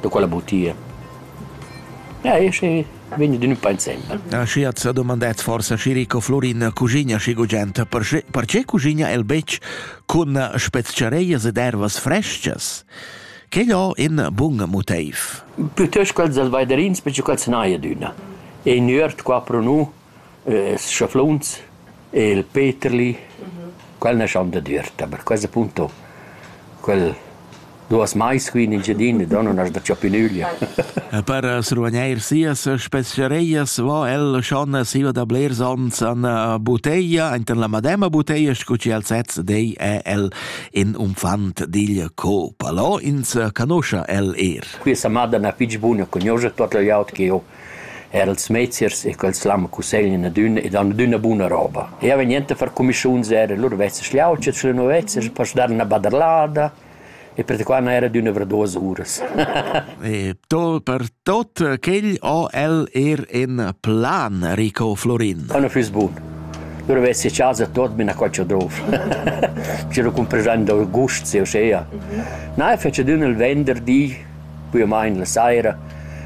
da quella butia. Ja, e schi vegni d'ün pa insembel. Ah, schi at s'ha domandat forsa Chirico Florin cuschigna schi gugent, perche, perche cuschigna el betg cun spezchareias ed ervas frestgas? Quel ho in bun motiv. Plütöst quels dals vaiderins, perche quels n'haja d'üna. E in üert qua pro nu Ils schafluns e il Peterli, quel naschan dad üerta, per quels appunto quel duos mais qui in Engiadina, da nun as da già più nüglia. E per srugnair sias speciarejas vo el schon siva da blers ons an buteglia, inter la mademma buteglia, scu chi el sez dei, è el in unfant digl co-palò, ins canuscha el eir. Quia sa madana fich buna, cugnuoscha tuot le glieud che ho Eir ils meziers e quels l'han cusseglian adüna ed han adüna buna roba. Eau vegn enter a far cumischuns eir a lur vezzas schlauchas scu nu vezzas per stu dare üna baderlada e perquai n'ha eir adüna avrà duos uras. E to per tot quel ho el eir ün plan, Rico Florin. O nu füss bun. Lur vess i chasa tot be 'na qualche drov. Schi lu cumpraràn da gusts, uschea. Na, e fetsch adüna il venderdi Buillamaing la saira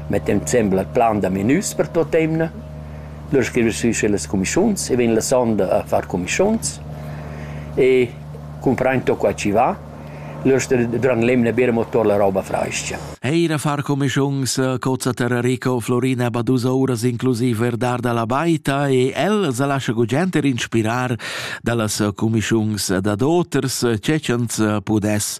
mettem insembel al plan da menüs per tuot emna. Lura scrivi sü sü las cumischuns e vegn la sonda a far cumischuns e cumprain to qua chi va. Lura sta dürant l'emna bira amo tuot la roba frais-cha. Eir a far cumischuns cozza Terrarico Florina ba dus ouras inclusiv Verdar da la Baita e ella sa lascha gugent er inspirar da las cumischuns dad oters, che cha'ns pudess